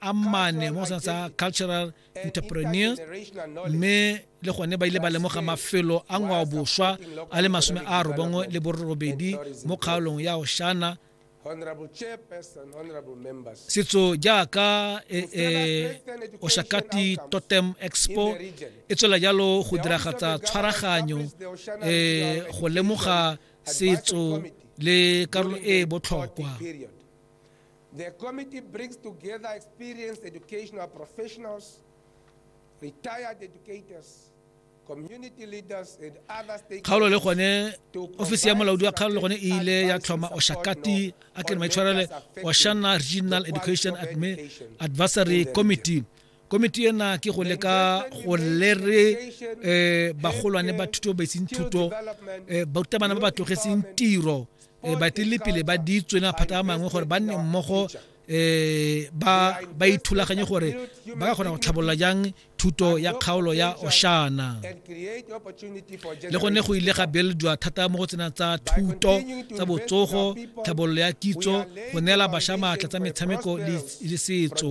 a mane mo sa tsa cultural entrepreneur mme le gone ba ile ba lemoga mafelo a ngwao boswa a le masome a robongwe le borobedi mo kgaolong ya oshana setso jaaka e, e, oshakati totem expo e tswela jalo go diragatsa tshwaraganyo e, go lemoga setso le karolo e e botlhokwa The committee brings together experienced educational professionals, retired educators, kgaolo le gone ofisi ya molaodi wa kgaolo le gone e ile ya tlhoma oshakati a ke maitshwarele oshana regional education advisory committee komiti ena ke go leka go lere um bagolwane ba thuto ba itseng thuto um eh, barutabana ba ba tlogetseng tiro um ba tlile pele ba di tswena phata a mangwe gore ba nne mmogo eh ba ba ithulaganye gore ba ka kgona go tlhabolola jang thuto ya kgaolo ya oshana le gone go ile ga beeledwa thata mo go tsena tsa thuto tsa botsogo tlhabololo ya kitso go neela bašwa maatla tsa metshameko le setso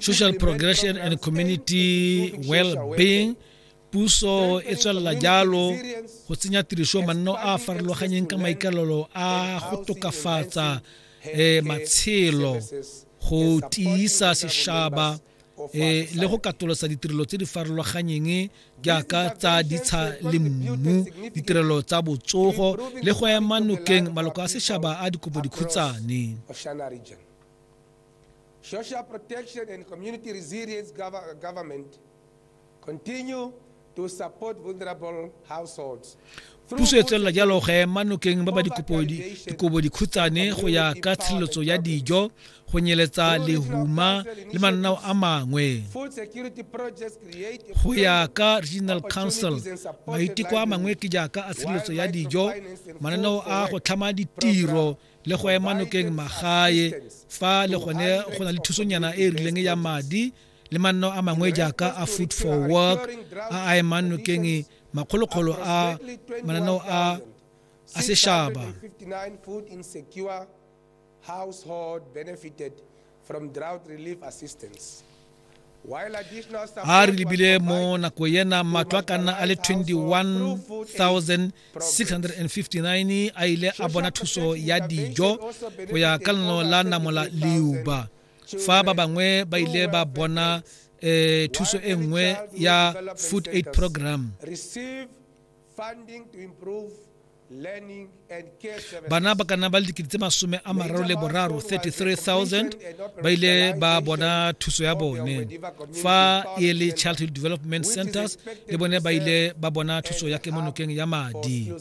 social progression and community well-being puso e tswelela jalo go tsenya tiriso manno a a farologanyeng ka maikalelo a go tokafatsa um matshelo go tiisa sešaba um le go katolosa ditirelo tse di farologanyeng jaaka tsa ditsha le mmu ditirelo tsa botsogo le go ema nokeng maloko a sešaba a dikobodikhutsane Social protection and community resilience gov- government continue to support vulnerable households. Through puso e tswelela jalo go ema nokeng ba ba dikopo di- dikobo dikhutshwane go ya ka tshireletso ya dijo go nyeletsa lehuma le mananao a mangwe Food security projects create a go ya ka regional council maiteko a mangwe ke jaaka a tshireletso ya dijo mananeo a go tlhama ditiro le go ema nokeng magae fa le gone go na le thusonyana e e rileng ya madi le manno a mangwe jaaka a food for work a a emang nokeng makgolokgolo a mananeo a a seshaba a re lebile mo nako ena matlo a ka nna a le 21659 a ile a bona thuso ya dijo go ya ka leno la namola leuba fa ba bangwe ba ile ba bona eh, thuso e nngwe ya food aid program bana ba ka nna ba le dikete tse masome a mararo le boraro 33000 ba ile ba bona thuso ya bone fa e le childhood development centers le bone ba ile ba bona thuso ya kemonokeng ya madi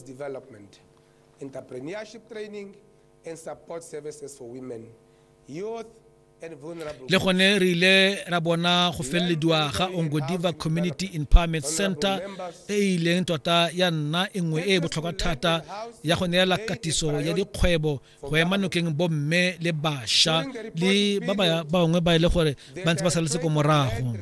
entrepreneurship training and support services for women youth le gone re ile ra bona go felelediwa ga ongodiva community empowerment center e e ileng tota ya nna e nngwe e e botlhokwa thata ya go neela katiso ya dikgwebo go ema nokeng bomme le bašwa le ba bangwe ba e le gore ba ntse ba saletse ko morago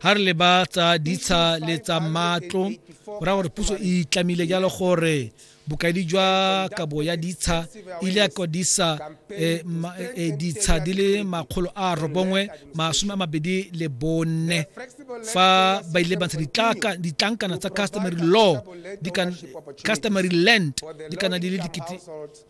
ga re leba tsa ditsha le tsa matlo go raya gore puso e itlamile jalo gore bokaedi jwa kabo ya ditsha e ile ya kwadisa eh, eh, eh, ditsha di le makgolo a robongwe masome a mabedi le bone fa ba ile ba ntsha ditlankana tsa customary law customary land di kana di le dikete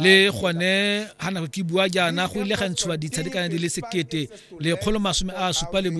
le gone ga nako ke bua jaana go ile ga ntshiwa ditshadikana di le sekete lekgolo masome a supa le